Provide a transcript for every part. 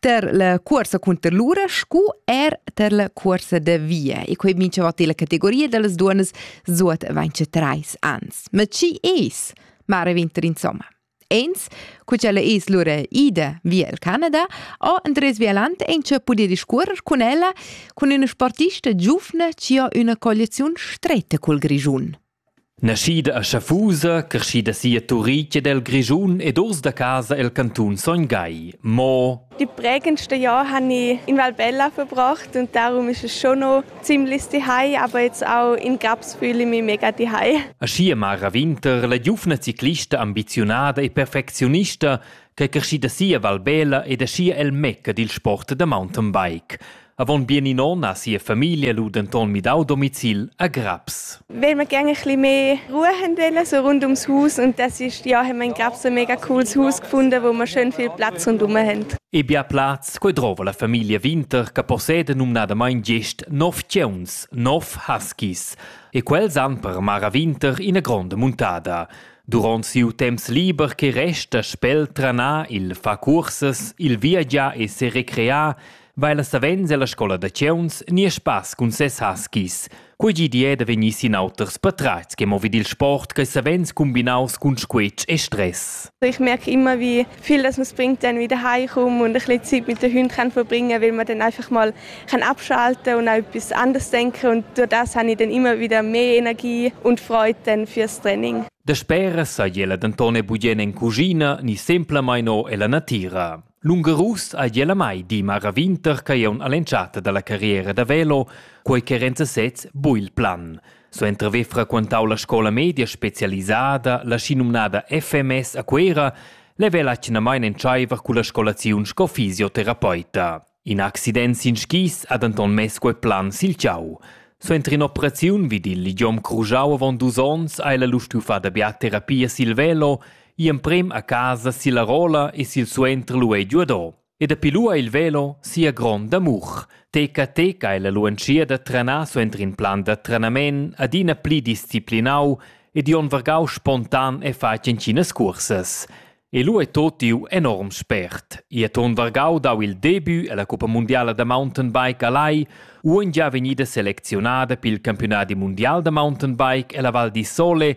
ter la cuorsa cunter lura scu er ter la cuorsa da via. E quei minchavot illa categoria dallas duonas zuot vaince trais ans. Ma chi es Mare Winter insomma? Ens, cu ch'ella es lura ida via il Canada, o Andres Vialant encha pudi discuorrer cun ella cun üna sportista giuvna chi ho üna colliaziun stretta cul Grischun. Naschida a Schaffusa, creschida si a Turitg ed el Grischun ed uss da casa el cantun Sogn Gagl. Mo Die prägendste Jahr habe ich in Valbella verbracht und darum ist es schon noch ziemlich zuhause, aber jetzt auch in Grabs fühle ich mich mega zuhause. Aschi Mara Winter, la giuvna ciclista ambiziunada e perfezionista, che è crescida si a Valbella ed aschi el mecca dil sport da mountainbike. Avon bien in onn ha sia famiglia lu denton midau domicil a Graps. Weil wir gerne ein bisschen mehr Ruhe haben wollen, so rund ums Haus. Und das ist, ja, haben wir in Graps ein mega cooles Haus gefunden, wo wir schön viel Platz rundherum haben. E bia plaz, quei drova la famiglia Winter, che possede numnadamain gest nov tgeuns, nov huskies. E quels han per Mara Winter ina gronda muntada. Duront siu temps liber che resta spel tranar il fa cursas, il viagiar e se recrear, vaila savens ella scola da chiuns ni spass cun ses huskies. Quei gi di è da vegnir sin auters patratgs che mo vid il sport che savens combinaus cun squetsch e stress. Ich merke immer, wie viel das uns bringt, dann wieder heimkommen und ein bisschen Zeit mit den Hunden kann verbringen, weil man dann einfach mal kann abschalten und auch etwas anderes denken und durch das habe ich dann immer wieder mehr Energie und Freude dann fürs Training. Da spera sai ella denton bugen en cuschina ni semplamain no ella natira. Lungarus ha ella mai di mar ravinter ch'ei aunc all'entschatta dalla carriera da velo, quei che Renza sez buc il plan. Suenter haver frequentau la scola media specialisada, la schinumnada FMS a Cuera, level atgnamain entscheiver culla scolaziun sco fisioterapeuta. In accident sin skis ha denton mess quei plan sil tgau. Suenter in'operaziun vid il ligiom crujau avon dus onns ha ella lu stuffà da biaterapia sil velo Gl'emprem a casa silla rolla e silsuenter lu ei giuado. E dapi lu ha il velo sia gronda amur. Teca teca ella lu entschiet da trenar suenter in plan da trenament adina pli disciplinau ed Jon vargau spontan e fatg entginas cursas. E lu ei totiu enorm spert. E Ton Vargau dau il debut ella Coppa mundiala da mountainbike a Lai, uon gia vegnida selecziunada pil campiunadi mundial da mountainbike ella Val di Sole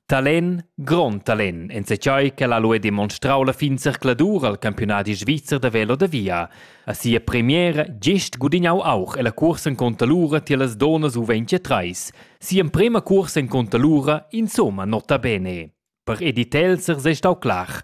Talen, grond talen, enzatgei ch'el ha lu demonstrau la fin zercladur al campiunadi svizzer da velo da via. A sia premiera gest gudignau auch ella cursa en contalura tier las donas U23. Sia emprema cursa en contalura, insomma, nota bene. Per Edith Elser sei stau clar.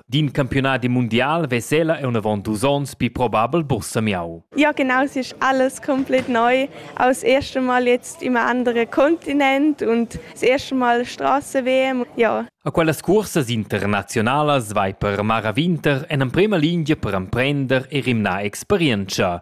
D'in campiunadi mundial ves'ella en avon dus onns pli probabel bursamiau. Ja genau, es ist alles komplett neu. Aus erste Mal jetzt im anderen Kontinent und das erste Mal Straßen-WM. Ja. A quellas cursas internazionalas vai per Mara Winter en emprema lingia per emprender e rimnar experientscha.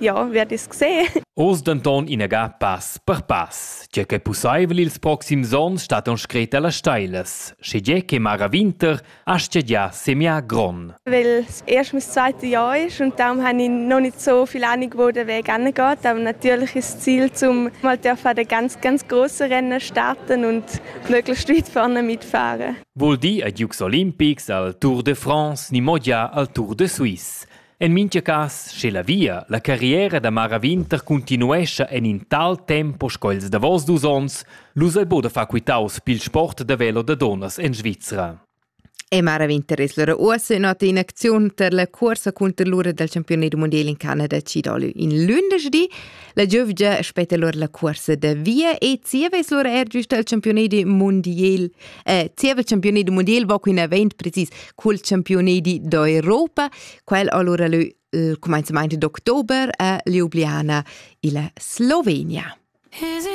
Ja, wer das gesehen? Oz denton inaga pass per pass. Tge che pussaivel ils proxims onns stat on scret alla Steiles, sche tge che Mara Winter astga già semia gron. Weil es erst mein zweites Jahr ist und darum habe ich noch nicht so viel Ahnung, wo der Weg hingeht. Aber natürlich ist das Ziel, um mal an den ganz, ganz grossen Rennen starten und möglichst weit vorne mitfahren. Vuol dir ad Jux Olympics al Tour de France ni mogia al Tour de Suisse. En mintga cass, sche la via, la carriera da Mara Winter continuescha en in tal tempo sco ils davos dus onns, lu sei buca da far quitaus pil sport da velo da dunnas en Svizra. E Mara Winter es lura uossa in ota in acziun per la cuorsa cunter l'ura dal campiunat mondial in Canada CW in lunedì. La giövgia aspetta lura la cuorsa da via e zieva es lura er giusta al campiunat mondial. Eh, zieva il campiunat mondial va quin avent precis col campioni di d'Europa, quel allora leu il comenzament d'october a Ljubljana illa Slovenia. Is it